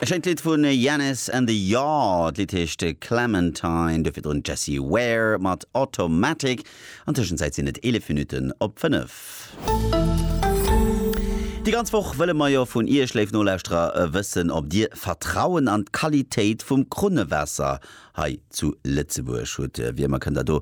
E schéint Lidd vu Janis and the Yard. D'Lidd heescht Clementine, dofir drun Jessie Ware mat Automatic. An Tëschenzäit sinn et 11 Minutten op 5. Déi ganz Woch wëlle mer jo vun Iech, léif Nolauschterer, wëssen, ob Dir Vertrauen an d'Qualitéit vum Krunnewaasser Hei zu Lëtzebuerg hutt wir, mer kënnt der do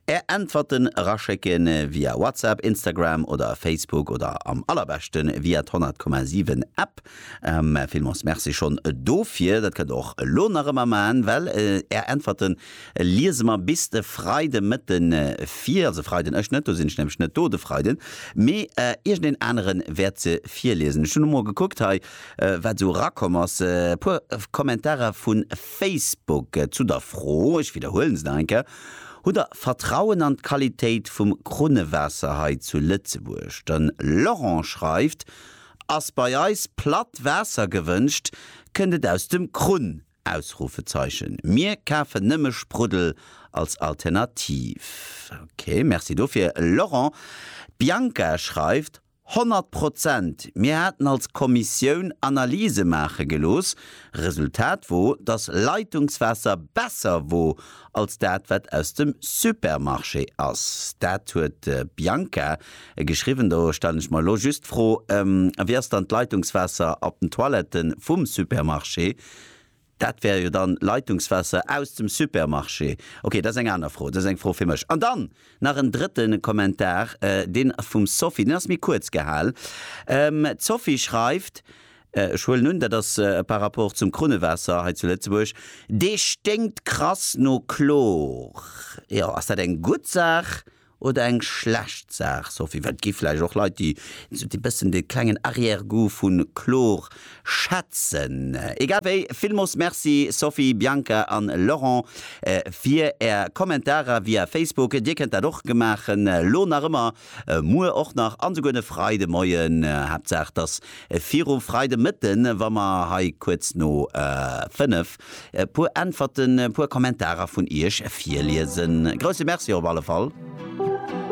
är Äntwerten eraschécken via WhatsApp, Instagram oder Facebook oder am allerbeschten via d'Honnertkommasiwen App. Mä villmols Merci schonn dofir. Dat kënnt der och elo nach ëmmer maachen, well är Äntwerten liese mer bis de Freide Mëtten vir. Also Freiden, ech net, do sinn ech nämlech net do de Freiden, mee iergendeen aneren wäert se virliesen. Ech hunn emol gekuckt hei wat esou erakomm ass, e puer Kommentarer vun. Facebook zu der Fro, ech widderhuelen se nach eng Kéier, Hutt Der Vertrauen an d'Qualitéit vum Krunnewaasser hei zu Lëtzebuerg? De Laurent schreift, Ass bei eis platt Waasser gewënscht, kënnt et aus dem Krunn! Ausrufezeichen Mir kafen nëmme Spruddel als Alternativ. Ok, Merci dofir Laurent. D'Bianca schreift, Honnert Prozent! Mir haten als Kommissioun Analyse maache gelooss. Resultat wor, dass Leitungswaasser besser wor als dat wat aus dem Supermarché ass. Dat huet de Bianca geschriwwen. Do stellen ech mer elo just d'Fro, Wéi ass dann d'Leitungswaasser op den Toiletten vum Supermarché? Dat wär jo dann Leitungswaasser aus dem Supermarché. Ok, dat ass eng aner Fro. Dat ass eng Fro fir mech. An dann nach en drëtte Kommentar, deen vum Sophie, deen ass méi kuerz gehal. D'Sophie schreift, ech huelen un, dat ass par rapport zum Krunnewaasser hei zu Lëtzebuerg, Dee sténkt krass no Chlor. Jo, ass dat eng gutt Saach oder eng schlecht Saach, Sophie? Well et gi vläicht och Leit, déi esou dee bëssen dee klengen Arrière-goût vu Chlor schätzen. Egal wéi, villmoos Merci Sophie, Bianca an Laurent fir Är Kommentarer via Facebook. Dir kënnt dat och gemaachen, elo nach ëmmer, muer och nach an esouguer de Freide Moien. Haaptsaach, et ass viru Freide Mëtten, wa mer hei kuerz no 5 E puer Äntwerten, e puer Kommentarer vun Iech virliesen. Grousse Merci op alle Fall!